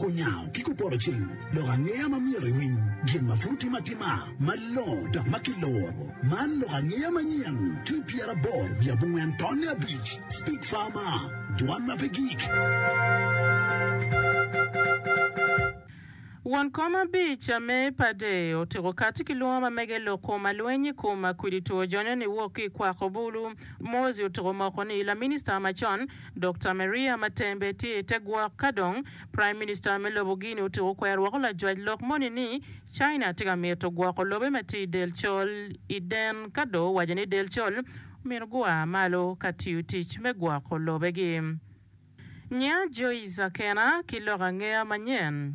Kunyango ki kupoto cing, lok angeya ma myero iwiny, gin ma pud timo atima, malongo dok ma kiloro. Man lok angeya manyen, ki pyeraboro wiye abongwen tonne abic, Speak Farmer, Dwan ma pe gik. Won kom abic a me pade otiko kati ki lwongo ma mege lok kom alweny i kom akwidi two jonyo ni wok ki i kwako bulu. Mozi otiko moko ni laminista macon Dokta Maria ma tembe tye i te gwok ka dong Praim Minista me lobo Guinea otyeko kwero woko lajwac lok moni ni China tye ka mito gwoko lobe ma tye i del col i den ka dong owaco ni del col omyero gua malo ka tiyo tic me gwoko lobegi. Nya Joyce Akena ki lok angeya manyen.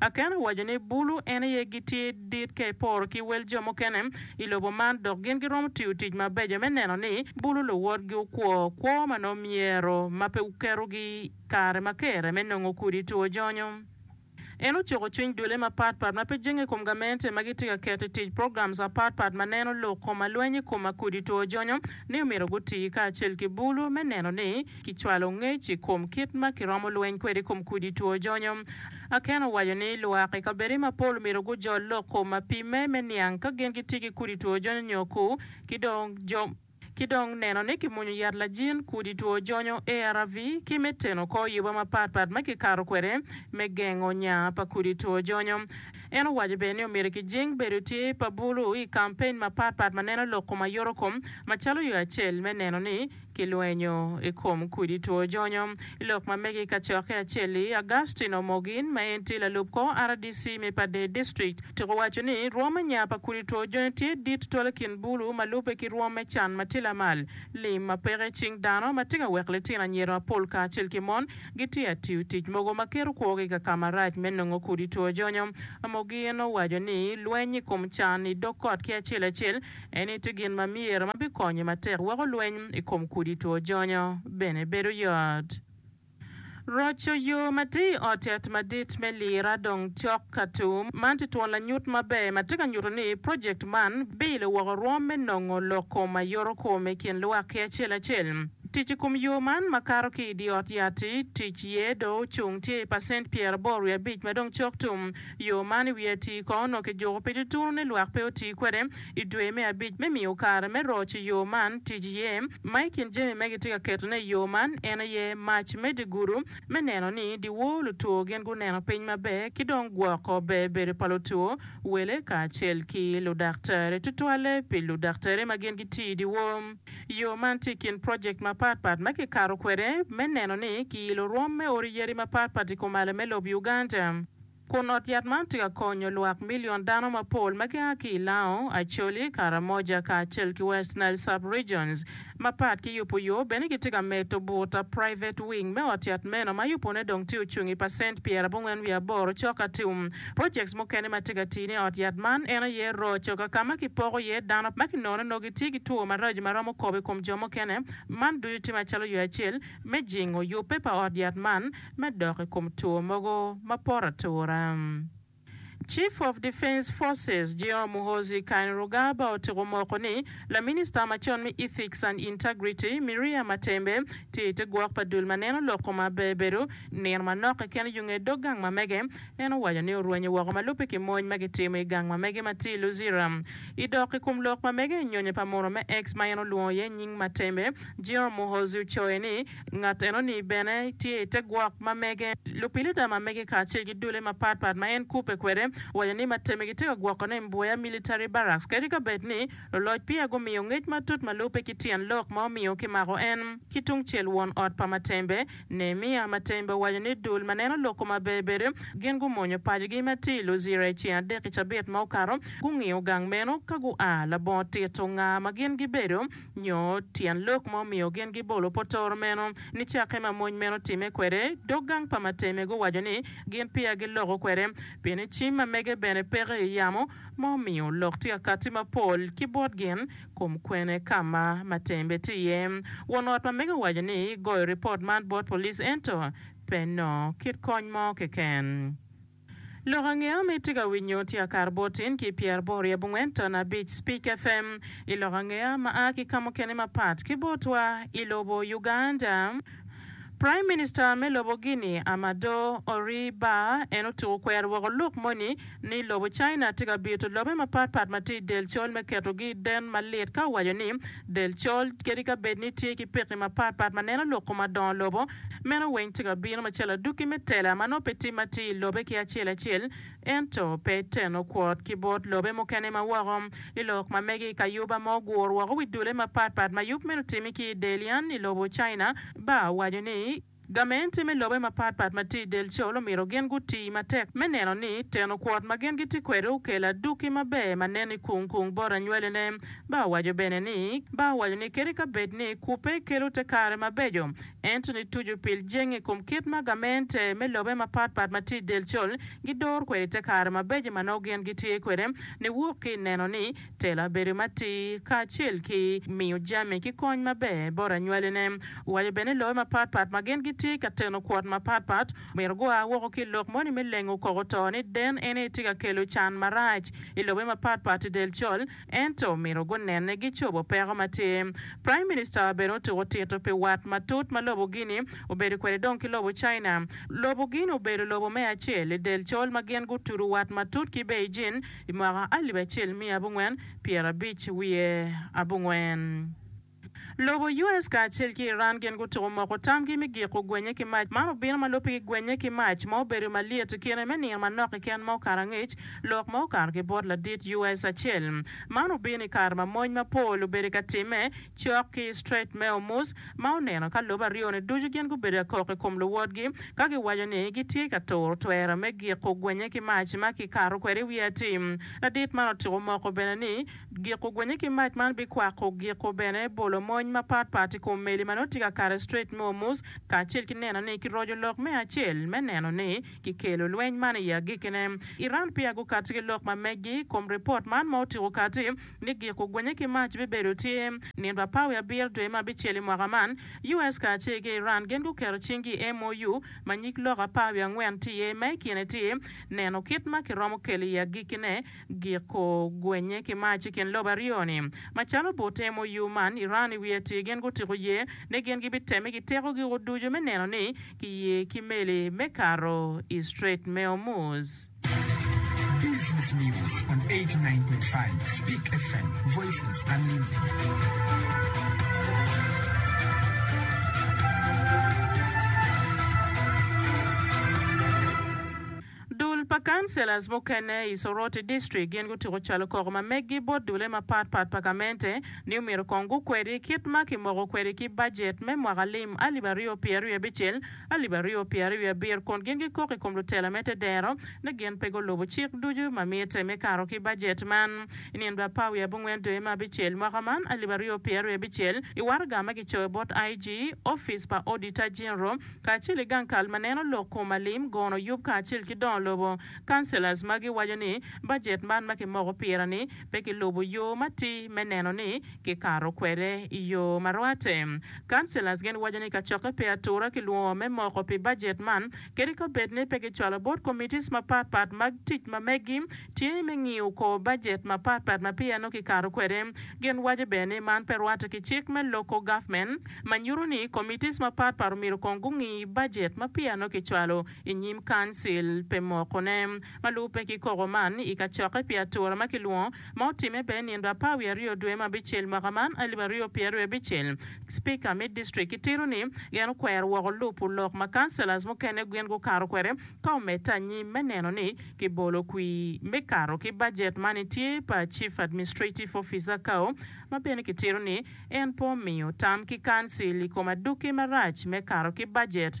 Aken owaco ni bulu en aye gitye dit ka eporo ki wel jo mukene i lobo man dok gin giromo tiyo tic mabeco me neno ni bulu luwotgi okwo kwo ma nongo myero ma pe guketogi kare ma kere me nongo kudi two jonyo. En ocuko cwiny dulle mapat pat ma pe jenge i kom gamente ma gitye ka keto i tic programs apat pat ma neno lok kom alweny i kom akudi two jonyo ni omyero guti kacel ki bulu me neno ni kicwalo ngec i kom kit ma kiromo lweny kwede i kom kudi two jonyo. Aken owaco ni lwak i kabeddi mapol omyero gujol lok kom ma pimme me niang ka gin gitye ki kudi two jonyo nyo ku, ki dong jo ki dong neno ni kimwonyo yat lajin kudi two jonyo, ARV, ki me teno kor yuba mapat pat ma kikato kwede me gengo nya pa kudi two jonyo. En owaco bene ni omyero kijing bedo tye pa bulu i kampen mapat pat ma neno lok kom ayotokom macalo yo acel me neno ni ki lwenyo i kom kudi two jonyo. I lok ma mege i kacokke acel-li, Augustine Omogin, ma en tye lalub kor rdc me Padee District, tuk owaco ni rwom me nya pa kudi two jonyo tye dit twala i kin bulu ma lubbe ki rwom me can ma tye lamal, lim ma peke i cing dano, ma tye ka weko litino anyira mapol kacel ki mon gitye ka tiyo tic mogo ma keto kwogi i ka ka marac me nongo kudi two jonyo. Omogin owaco ni lweny i kom can i dog kot ki acel acel, Eni tye gin ma myero ma bikonyi matek weko lweny i kom kudi two jonyo bene bedo yot. Roco yo ma tye i ot yat madit me lira dong cok ka tum. Man tye twon lanyut maber ma tye ka nyuto ni projekt man bilo woko rwom me nongo lok kom ma yoro kom i kin lwak ki acel acel. Tic i kom yo man ma kato ki i dye ot yat-ti, tic iye dong ocung tye i pacent pyeraboro wiye abic ma dong cok tum. Yo man i wiye atir kono onongo kijuko pi tutunu ni lwak pe oti kwede i dwe me abic me miyo kare me roc i yo man tic iye. Ma i kin jami ma gitye ka ketone i yo man en aye mac me dye gudo me neno ni dyewor lutwo gin guneno piny maber ki dong gwoko ber bedo pa lutwo, wele kacel ki ludaktari, tutwalle pi ludaktari ma gin gitiyo i dyewor. Yo man tye i kin project mapat pat ma kikato kwede me neno ni kiilo rwom me odi yadi mapat pat i komalo me lob Uganda. kun ot yat man tye ka konyo lwak milion dano mapol ma gia ki i Lao, Acholi, Karamoja, kacel ki West Nile Sub-regions mapat ki yubo yo. Bene gitye ka medo buta, private wing, me ot yat meno ma yubone dong tye ocung i pacent pyerabongwen wiye aboro cok atum. Projects mukene ma tye ka tine i ot yat man en aye roco ka ka ma kipoko iye dano ma kinono nongo gitye ki two maraco ma romo kobo i kom jo mukene. Man ducu tye macalo yo acel me jingo yubbe pa ot yat man. me dok i kom two mogo ma poto atura. Chief of Defence Forces Geo Muhoozi Kainerugaba otiko moko ni laminista macon me Ethics and Integrity Miria Matembe tye ite gwok pa dul ma neno lok kome aber bedo nino manok keken yo nge dog gang mamege. En owaco ni orwenyo woko ma lubbe ki mony ma gitimo i gang mamege ma tye i Luzira. I dok i kom lok mamege, nyonyo pa munu me X ma en olwongo iye nying Matembe, Geo Muhoozi ocoyo ni Ngat enoni bene tye i te gwok ma mege. Lupilida ma mege kacel ki dulle mapat pat ma en kubbe kwede owaco ni mateme gitye ka gwokone i Mboya Military Barracks kadi ka bed ni luloc peya gumiyo ngec matut ma lubbe ki tyen lok ma omiyo kimako en. Ki tungcel won ot pa Matembe, Nehemiah Matembe owaco ni dul ma neno lok kome aber bede gin gumonyo pacogi ma tye i Luzira i ceng adek i cabit ma okato, gungiyo gang meno ka gua labongo tito nga ma gin gibedo. Nyo tyen lok ma omiyo gin gibolo potoro meno? Nicakke ma mony meno otimme kwede, dog gang pa mateme guwaco ni gin peya giloko kwede, pien ni cim ma mege bene peke i yamo, ma omiyo lok tye ka katti mapol ki bot gin kom kwene ka ma matembe tye iye. Won ot ma mege owaco ni goyo ripot man bot police ento pe nongo kit kony mo keken. Lok ange ma itye ka winyo tye akar botin ki pyer aboro i abongwen ton abic Speak FM i lok ange ma a ki kamukene mapat ki botwa i lobo Uganda. Prime Minister me lobo Guinea Amadou Horry Bar en otuko kwero woko lok moni ni lobo China tye ka bito lobe mapatpat ma tye i del col me ketogi i den malit ka owaco ni Del col, kadi ka bed ni tye ki pekki mapat pat ma neno lok kom adongo lobo, meno weng tye ka bino macalo adukki me tela ma nongo pe timme atir i lobe ki acel acel, ento pe teno kwot ki bot lobe mukene ma woko. I lok ma mege i kayuba ma ogur woko wi dule mapat pat ma yub meno otimi ki i del yan i lobo China, Barr waco ni, Gamente me lobe mapat pat ma tye i del col omyero gin gutii matek me neno ni teno kwot ma gin gitye kwede okelo aduki maber ma nen i kung kung bot anywalene. Ba owaco bene ni, Ba owaco ni kadi ka bed ni kubbe kelo te kare mabeco, ento ni tucu pil jenge i kom kit ma gamente me lobe mapat pat ma tye i del col gidoro kwede te kare mabeco ma nongo gin gitye kwede ni wok ki i neno ni Tela bedo matir kacel ki miyo jami ki kony maber bot anywalene. Owaco bene ni lobe mapat pat ma gin gitye ka teno kwot mapat pat omyero gua woko ki i lok moni me lengo koko to ni den en aye tye ka kelo can marac i lobe mapat pat i del col ento omyero gunenne gicobo peko ma tye. Prime Minister bene otuko tito pi wat matut ma lobo Guinea obedo kwede dong ki lobo China. Lobo Guinea obedo lobo me acel i del col ma gin gutudo wat matut ki Beijing i mwaka alip acel miya abongwen pyera abic wiye abongwen. Lobo US kacel ki Iran gin gutuko moko tamgi mi giko gwenye ki mac. Man obino ma lopigi gwenye ki mac ma obedo malyet kine me niye manok keken ma okato angec, lok ma okato ki bot ladit US acel. Man obino i kare ma mony mapol obedo ka timme Cok ki i Strait me Ormuz, ma oneno ka lobo aryo-ni ducu gin gubedo akok i kom luwotgi, ka giwaco ni gitye ka turo twero me giko gwenye ki mac ma kikato kwede i wi atim. Ladit man otyeko moko bene ni, giko gwenye ki mac man bikwako giko bene bolo mony mapat pat i kom meli ma nongo tye ka kato i Strait me Ormuz, kacel ki neno ni kiroco lok me acel me neno ni kikelo lweny man i agikine. Iran peya gukati ki lok ma meggi i kom ripot man ma otyeko kati. ni gik ogwenye ki mac bibedo tye. Nino pa Pawi abiro dwe ma bicel i mwaka man, US kacel ki Iran gin guketo cinggi i MOU ma nyig lok aparwi angwen tye iye ma i kine tye neno kit ma kiromo kelo i agikkine gik ogwenye ki mac i kin lobo aryo ni. Macalo but MOU man, Iran i wiye tye gin gutiko ye ni gin gibitemme ki teko gigo ducu me neno ni giye ki meli me kato i Strait me Hormuz. Dul pa councillors mukene i Soroti District gin gutyeko calo koko ma meggi bot dulle mapat pat pa gamente ni omyero kong gukwedi kit ma kimoko kwedi ki budget me mwaka lim alip aryo pyeraryo abicel alip aryo pyera aryo wiye abiro kun gin gikok i kom lutela me tedero ni gin pe gulubo cik ducu ma mitte me kato ki bajet man. I nino dwe apar wiye abongwen dwe me abicel mwaka man alip aryo pyera aryo abicel, i waraga ma kicoyo bot IG, Opic pa Odita Jinro, kacel ki gang kal ma neno lok kom alim, gono yub kacel ki dongo lobo, councillors, ma giwaco ni bajet man ma kimoko pire ni pe kilubo yo matir me neno ni kikato kwede i yo ma rwate. Councillors gin waco ni kacokke pe atura ki lwongo me moko pi budget man kadi ka obed ni pe gicwalo bot committees mapat pat mag tic ma meggi tye me ngiyo kor budget mapat pat ma peya nongo kikato kwede. Gin waco bene ni man pe rwate ki cik me local government ma nyuto ni committees mapat pat omyero kong gungi budget ma peya nongo kicwalo i nyim council pe mokone. Ma lubbe ki koko man i kacokke pi atura ma kilwongo ma otimme bene nino apar wiye aryo dwe ma abicel mwaka man alip aryo pyeraryo i abicel, Speaker me District kitito ni en okwero woko lupu lok ma Councillors mukene gin gukato kwede ka omedde anyim me neno ni kibolo kwir me kato ki budget ma nitye pa Chief Administrative Officer Kao ma bene kitito ni en pe omiyo tam ki Council i kom adwoki marac me kato ki budget